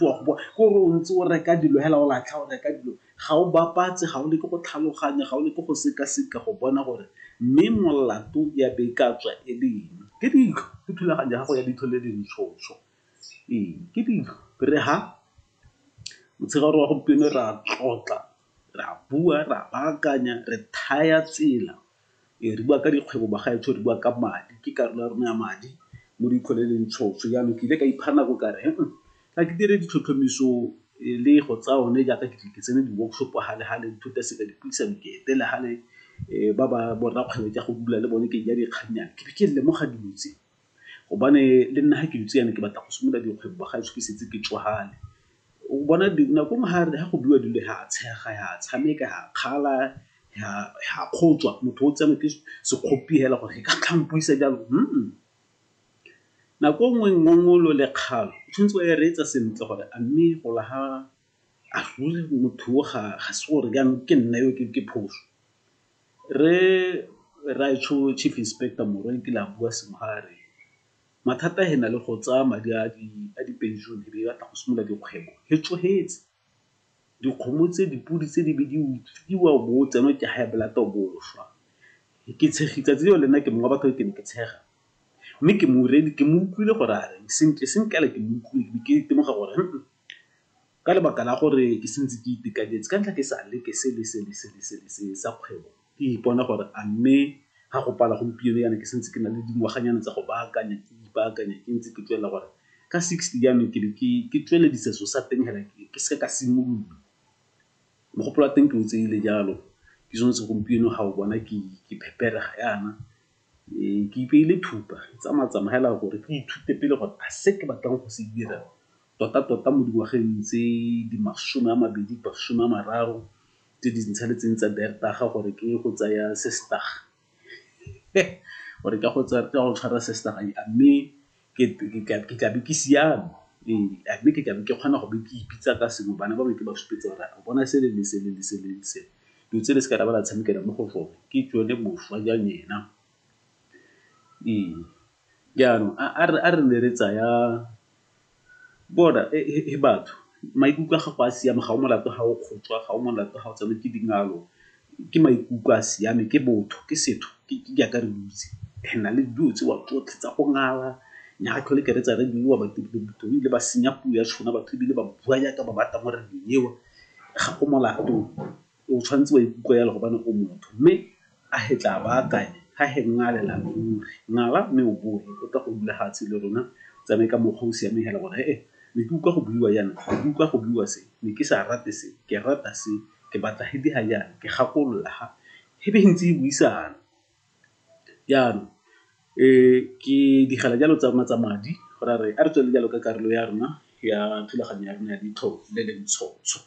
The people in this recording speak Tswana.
Wa go bona gore o ntse o reka dilo fela o latlha, o reka dilo, ga o bapatse, ga o leke go tlhaloganya, ga o leke go sekaseka go bona gore mme molato ya be e ka tswa e le eng. Ke dilo, ke thulaganyo ya gago ya ditho le dintshontsho. Ee, ke dilo. Ke re fa motshegare wa gompieno re a tlotla, re a bua, re a baakanya, re thaya tsela. Ee, re bua ka dikgwebo bagaetsho, re bua ka madi, ke karolo ya rona ya madi mo re itlholeleng tšhoso. Jaanong ke ile ka ipha nako ka re ga ke dire ditlhotlhomiso le go tsaya one jaaka ke tle ke tsene di-workshop gale gale nthuta seka dipuisano ke etele gale ba ba borra kgwebo ke go bula le bone ke ja dikgannyana ke be ke lemoga dilo tse. gobane le nna ga ke dutse yana ke batla go simolola dikgwebo ba ga ešo ke setse ke tšwagale. O bona nako e nngwe ga re, ga go buiwa dilo ra tshega, ra tshameka, ra kgala, ra kgotswa, motho o tsenwa ke sekgopi fela gore e ka tla mpuisa jalo . Nako e nngwe ngongolo le kgalo o tshwanetse wa e reetsa sentle gore a mme go lla ga, a ruri motho o ga se gore jaanong ke nna yo ke phoso. Rre Rraaetsho Chief Inspector Morwa e kile a bua sengwe ga a re, mathata he na le go tsaya madi a dipension e be e batla go simolola dikgwebo he tsohetse. Dikgomo tse, dipodi tse di be di utswiwa o bo o tsenwa ke high blood o bo o swa. Ke tshegi, 'tsatsi leo le nna ke mongwe wa batho ke ne ke tshega mme ke mo utlwile gore a reng, sentle sentle fela ke mo utlwile ke be ke temoga gore . ka lebaka la gore ke sentse ke itekanetse ka ntlha ke sa leke se le se le se le se le se sa kgwebo, ke ipona gore a mme ga go pala gompieno jaana ke sentse ke na le dingwaganyana tsa go baakanya, ke ipaakanya ke ntse ke tswelela gore ka sixty jaanong ke be ke ke tsweledisa se'o sa teng hela ke seke ka simolola. Mogopolo wa teng ke o tseile jalo, ke sone se gompieno ga o bona ke ke pheperega jaana Ee, ke ipeile thupa, ke tsamaya-tsamaya fela gore ke ithute pele gore a se ke batlang go se dira tota-tota mo dingwageng tse di masome a mabedi, masome a mararo tse di ntshaletseng tsa beertaga gore ke ye go tsaya sestaga gore ke a go tshwara sestaga. Mme ke tla be ke siame, a mme ke tla be ke kgona go be ke ipitsa ka sengwe, bana ba me ke ba supetsa gore a bona sele le sele le sele le sele. Dilo tse le seka la ba la tshamekela mo go tsone, ke tsone boswa jwa lena. Ee, jaanong a re nne re tsaya bona he batho, maikutlo a gago a siame, ga o molato ha o kgotswa, ga o molato ha o tsenwa ke dingalo, Ke maikutlo a siame, ke botho, ke setho, ke jaaka re dutse. Re na le dilo tseo tsotlhe tsa go ngala, nya ga tlhole ke reetsa re buiwa batho ebile ba senya puo ya tshona, batho ebile ba bua jaaka ba batla mo radio-ng eo. Ga go molato, o tshwanetse wa ikutlwa jalo gobane o motho. Mme a he tla ba akanye, a he ngalela ruri, ngala mme o boe o tla go dula fatshe le rona, o tsamaye ka mokgwa o o siameng fela gore ne ke utlwa go buiwa jaana, ne ke utlwa go buiwa se, ne ke sa rate se, ke rata se. ke batla he di ha jaana ke gakolola ha he be he ntse he buisana. Jaanong ke digela jalo tsa rona tsa madi go ra re a re tswelele jalo ka karolo ya rona ya thulaganyo ya rona ya ditlhong le le ntshotsho.